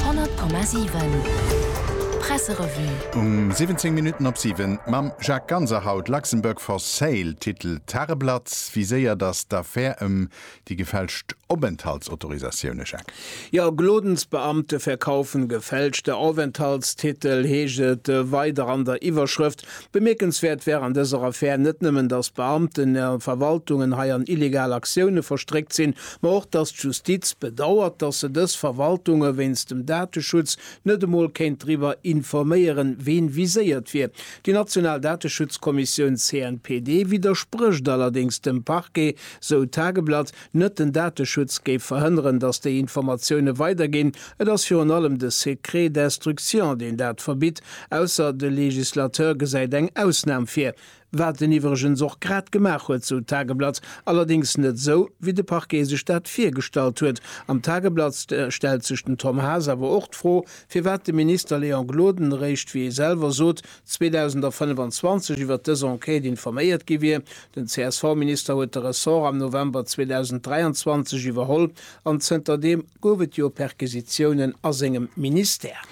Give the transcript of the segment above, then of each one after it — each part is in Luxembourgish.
100,7 Presserevue. Um 17 Minutten op 7 mam Jacques Ganser haut Luxembourg for sale, Titel Tageblatt, Wéi séier datt d'Affär ëm déi gefälscht Openthaltsautorisatioune, Jacques? Jo, Glodensbeamte verkaufen gefälschte Aufenthaltstitel, heescht et weider an der Iwwerschrëft. Bemierkenswäert wär an dëser Affär net nëmmen, datt Beamten a Verwaltungen hei an illegal Aktioune verstréckt sinn, ma och, datt d'Justiz bedauert, datt se dës Verwaltunge wéinst dem Dateschutz net emol kéint driwwer informéieren, ween viséiert wier. Déi national Dateschutzkommissioun CNPD widdersprécht allerdéngs dem Parquet, sou d'Tageblatt. Net den Dateschutz géif verhënneren, datt déi Informatioune weiderginn, et ass virun allem de Secret d'instruction, deen dat verbitt, ausser de Législateur gesäit eng Ausnam vir, wat en iwwregens och grad gemaach huet, sou d'Tageblatt, allerdéngs net esou, wéi de Parquet sech dat virgestallt huet. Am Tageblatt stellt sech den Tom Haas awer och d'Fro, firwat de Minister Léon Gloden eréischt, wéi e selwer sot, 2025 iwwert dës Enquête informéiert gi wier. Den CSV-Minister huet de Ressort am November 2023 iwwerholl an zënter deem gouf et jo Perquisitiounen a sengem Ministère.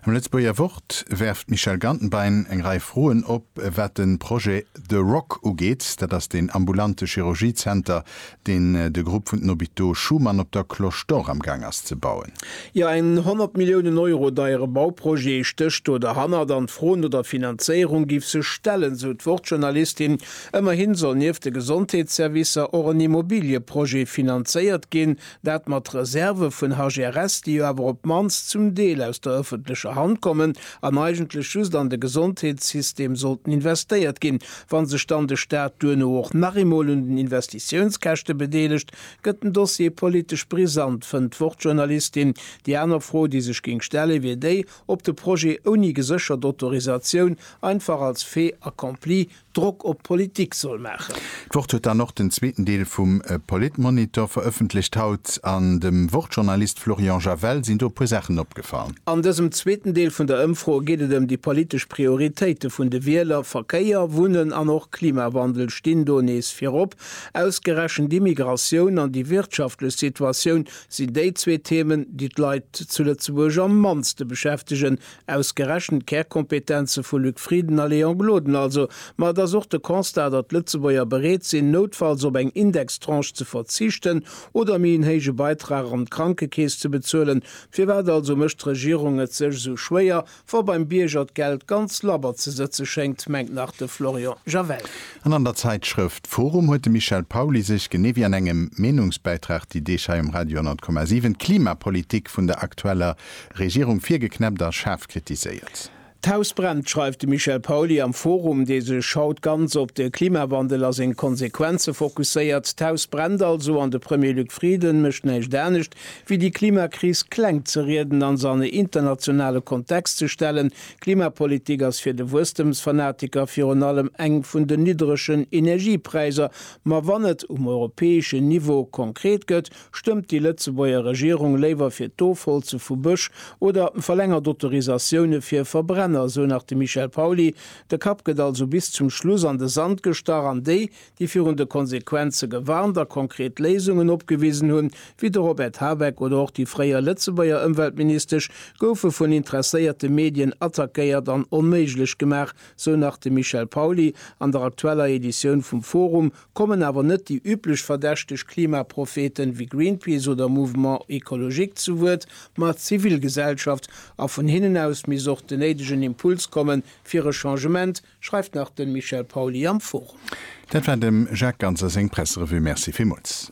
Am Lëtzebuerger Wort werft d'Michelle Gantenbein eng Rei Froen op, wat de Projet The Rock ugeet. Dat ass deen ambulante Chirurgie-Zenter, deen de Grupp vun den Hôpitaux Schuman op der Cloche d'Or am Gaang ass ze bauen. Jo, en 100 Milliounen Euro deiere Bauprojet stécht do derhannert an d'Fro no der Finanzéierung géif sech stellen, esou d'Wort-Journalistin. Ëmmerhin soll nieft de Gesondheetsservicer och en Immobiliëprojet finanzéiert ginn, dat mat Reserve vun HGRS, déi jo awer op d'mannst zum Deel aus der ëffentlecher Hand kommen an eigentlech just an de Gesondheetssystem sollten investéiert ginn. Wa sech dann de Staat duerno och nach eemol un den Investitiounskäschte bedeelegt, gëtt den Dossier politesch brisant, fënnt d'Wort-Journalistin. Déi aner Fro, déi sech géing stellen, wier déi, ob de Projet ouni geséchert Autorisatioun, einfach als fait accompli, Drock op d'Politik soll maachen. D'Wort huet dann och den zweeten Deel vum Politmonitor verëffentlecht haut. An dem Wort-Journalist Florian Javel sinn do e puer Saachen opgefall. An dësem zweeten Deel vun der Ëmfro geet et ëm déi politesch Prioritéite vun de Wieler. Verkéier, Wunnen an och Klimawandel stinn do nees virop. Ausgerechent d'Immigratioun an déi wirtschaftlech Situatioun sinn déi zwee Themen, déi d'Leit zu Lëtzebuerg am mannste beschäftegen. Ausgerechent d'Kärkompetenze vu Luc Frieden a Léon Gloden also. Ma et ass och de Constat, datt d'Lëtzebuerger bereet sinn, noutfalls op eng Indextranche ze verzichten oder méi en héije Beitrag an d'Krankekeess ze bezuelen, Firwat also mécht d'Regierung et sech esou schwéier, wa beim Bierger d'Geld ganz labber ze sëtze schéngt, mengt nach de Florian Javel. An an der Zäitschrëft forum huet de Michel Pauly sech, genee wéi an engem Meenungsbäitrag déi Deeg hei um Radio 100,7, d'Klimapolitik vun der aktueller Regierung virgeknäppt a schaarf kritiséiert. D'Haus brennt, schreift de Michel Pauly am Forum, dee sech haut ganz op de Klimawandel a seng Konsequenze fokusséiert. D'Haus brennt also an de Premier Luc Frieden mécht näischt anescht, wéi déi Klimakris kleng ze rieden an se an e internationale Kontext ze stellen. Klimapolitik ass fir de Wuesstëmsfanatiker virun allem eng vun den niddregen Energiepräiser. Ma wann et um europäeschen Niveau konkret gëtt, Stëmmt déi Lëtzebuerger Regierung léiwer fir d'Ofholze vu Bësch oder verlängert Autorisatioune fir Verbrenner, esou nach de Michel Pauly. De Kapp gëtt also bis zum Schluss an de Sand gestach an déi, déi virun de Konsequenze gewarnt a konkret Léisungen opgewisen hunn, wéi de Robert Habeck oder och déi fréier Lëtzebuerger Ëmweltministesch, goufe vun interesséierte Medien attackéiert an onméiglech gemaach, esou nach de Michel Pauly an der aktueller Editioun vum Forum. Kommen awer net déi üblech verdächteg Klimapropheten wéi Greenpeace oder Mouvement Ecologique zu Wuert, ma d'Zivilgesellschaft, a vun hinnen aus misst och den néidegen Impuls kommen fir e Changement, schreift nach den Michel Pauly am Forum. Dat war dem Jacques Ganser seng Presserevue. Merci villmools.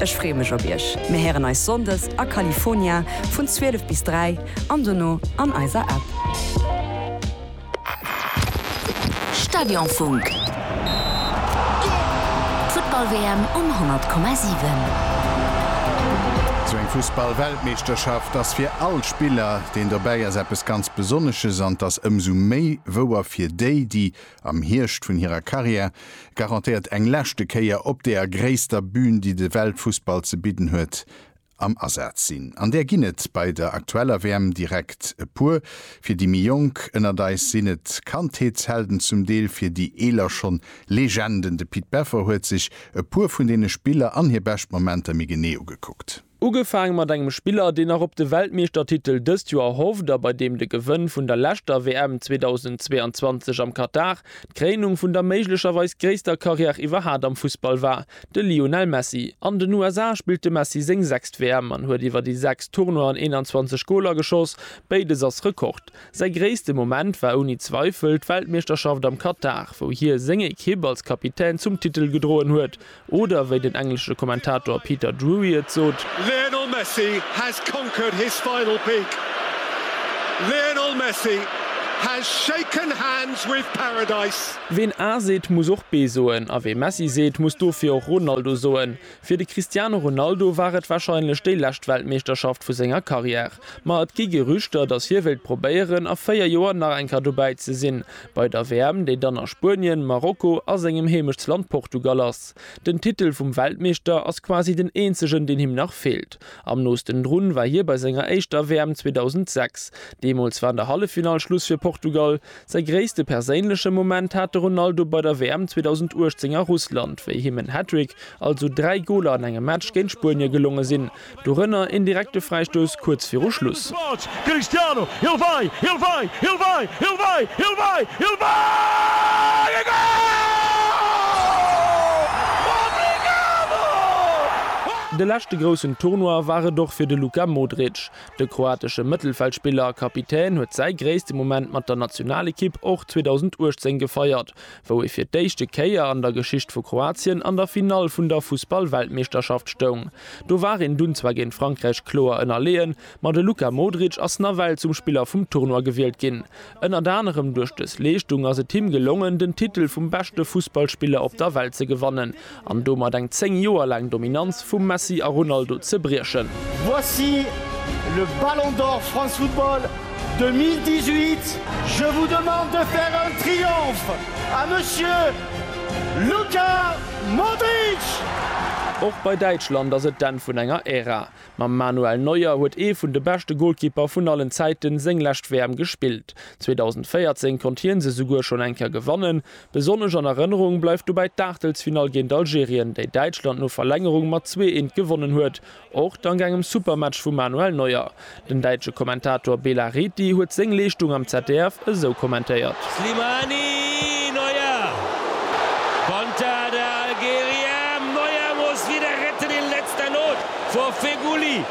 Ech free mech op iech. Mir héieren eis Sonndes a California vun 12 bis 3 an dono an eiser App. Stadionfunk. D'Futtball-WM um 100,7. Sou eng Fussball-Weltmeeschterschaft ass fir all Spiller, deen dobäi ass, eppes ganz Besonnesches an 't ass ëmsou méi wouer fir déi, déi. Am Hierscht vun hirer Karriär garantéiert eng leschte Kéier op deer gréisster Bün, déi de Weltfussball ze bidden huet, am Asaz sinn. An där ginn et bei der aktueller WM direkt e puer. Fir déi méi Jonk ënnert eis sinn et Kandheetshelden, zum Deel fir déi eeler schonn Legenden. De Pit Beffer huet sech e puer vun deene Spiller an hir bescht Momenter méi genee ugekuckt. Ugefaang mat engem Spiller, deen nach op de Weltmeeschtertitel dëst Joer hofft a bei deem de Gewënn vun der leschter WM 2022 am Katar d'Kréinung vun der méiglecherweis gréisster Karriär iwwerhat am Fussball war, de Lionel Messi. An den USA spillt de Messi seng sechst WM an huet iwwer déi sechs Tournoien 21 Goler geschoss, béides ass Rekord. Säi gréisste Moment war ouni Zweifel d'Weltmeeschterschaft am Katar, wou hie seng Ekipp als Kapitän zum Titel gedroen huet. Oder wéi den englesche Kommentator Peter Drury et sot. Lionel Messi has conquered his final peak. Lionel Messi has shaken hands with paradise. Ween A seet, muss och B soen, a wee Messi seet, muss dofir och Ronaldo soen. Fir de Cristiano Ronaldo war et warscheinlech déi lescht Weltmeeschterschaft vu senger Karriär. Ma et gi Gerüchter, datt hie wéilt probéieren, a 4 Joer nach eng Kéier dobäi ze sinn. Bei der WM, déi dann a Spuenien, Marokko a sengem Heemechtsland Portugal ass. Den Titel vum Weltmeeschter ass quasi den eenzegen, deen him nach feelt. Am noosten drun war hie bei senger éischter WM 2006. Deemools war an der Halleffinall Schluss fir Portugal. Säi gréisste perséinleche Moment hat de Ronaldo bei der WM 2018 a Russland, wéi him en Hattrick, also dräi Goler an engem Match, géint Spuenie gelonge sinn. Dorënner een direkte Fräistouss kuerz viru Schluss. De leschte groussen Tournoi war et och fir de Luka Modric. De kroatesche Mëttelfeldspiller a Kapitän huet säi gréisste Moment mat der Nationalekipp och 2018 gefeiert, wou ee fir d'éischte Kéier an der Geschicht vu Kroatien an der Finall vun der Fussballweltmeeschterschaft stoung. Do war een dunn zwar géint Frankräich kloer ënnerleeën, ma de Luka Modric ass nawell zum Spiller vum Tournoi gewielt ginn. Ënnert anerem duerch dës Leeschtung ass et him gelongen, den Titel vum beschte Fussballspiller op der Welt ze gewannen. an domat eng 10 Joer laang Dominanz vum Messi a Ronaldo ze briechen. Voici le Ballon d'Or France Football 2018. Je vous demande de faire un triomphe à Monsieur Luka Modric! Och bei Däitschland ass et d'Enn vun enger Ära. Mam Manuel Neuer huet ee vun de beschte Golkipper vun allen Zäiten seng lescht WM gespillt. 2014 konnt hien se souguer schonn eng Kéier gewannen, Besonnesch an Erënnerung bleift dobäi d'Aachtelsfinall géint Algerien, déi Däitschland no Verlängerung mat zwee eent gewonnen huet, och dank engem super Match vum Manuel Neuer. Den däitsche Kommentator Bela Reti huet seng Leeschtung am ZDF esou kommentéiert. Slimani! Neuer! Konter der Algerier! Neuer muss wieder retten in letzter Not vor Feghouli!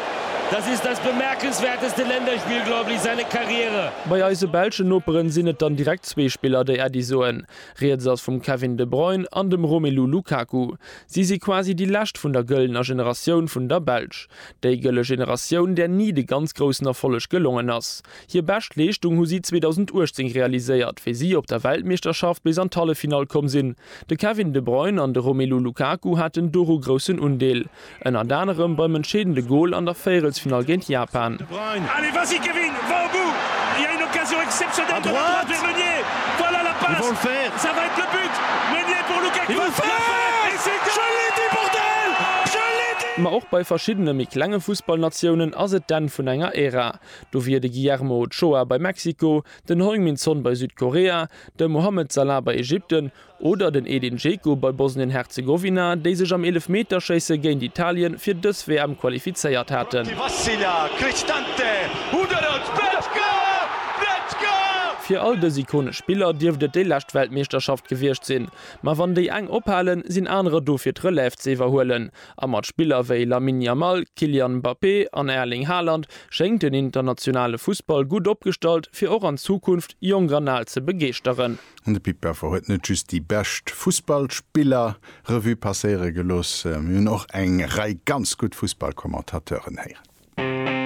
Das ist das bemerkenswerteste Länderspiel, glaube ich, seine Karriere! Bei eise belschen Noperen sinn et dann direkt Zwee Spiller, déi Äddi soen. Rieds ass vum Kevin De Bruyne an dem Romelu Lukaku. Si si quasi déi lescht vun der gëllener Generatioun vun der Belsch. Déi gëlle Generatioun, där ni de ganz groussen Erfolleg gelongen ass. Hir bescht Leeschtung hu si 2018 realiséiert, wéi si op der Weltmeeschterschaft bis an d'Halleffinall komm sinn. De Kevin De Bruyne an de Romelu Lukaku haten doru groussen Undeel. Ënnert anerem beim entscheedende Gol an der Véierelsfinall géint Japan. Ma och bei verschiddene méi klenge Fussballnatiounen ass et d'Enn vun enger Ära. Do wier de Guillermo Ochoa bei Mexiko, den Heung-Min Son bei Südkorea, de Mohamed Salah bei Ägypten Oder den Edin Dzeko bei Bosnien-Herzegowina, déi sech am Eelefmeterschéisse géint Italien fir dës WM qualifizéiert haten. Fir all dës ikonesch Spiller dierft et déi lescht Weltmeeschterschaft gewiescht sinn. Ma wann déi eng ophalen, sinn anerer do fir d'Relève ze iwwerhuelen. A mat Spiller wéi Lamine Yamal, Kylian Mbappé an Erling Haaland schéngt den internationale Fussball gutt opgestallt, fir och an Zukunft jonk an al ze begeeschteren. An de Pit Beffer huet net just déi bescht Fussballspiller Revue passéiere gelooss, mir hunn och eng Rei ganz gutt Fussballkommentateuren héieren.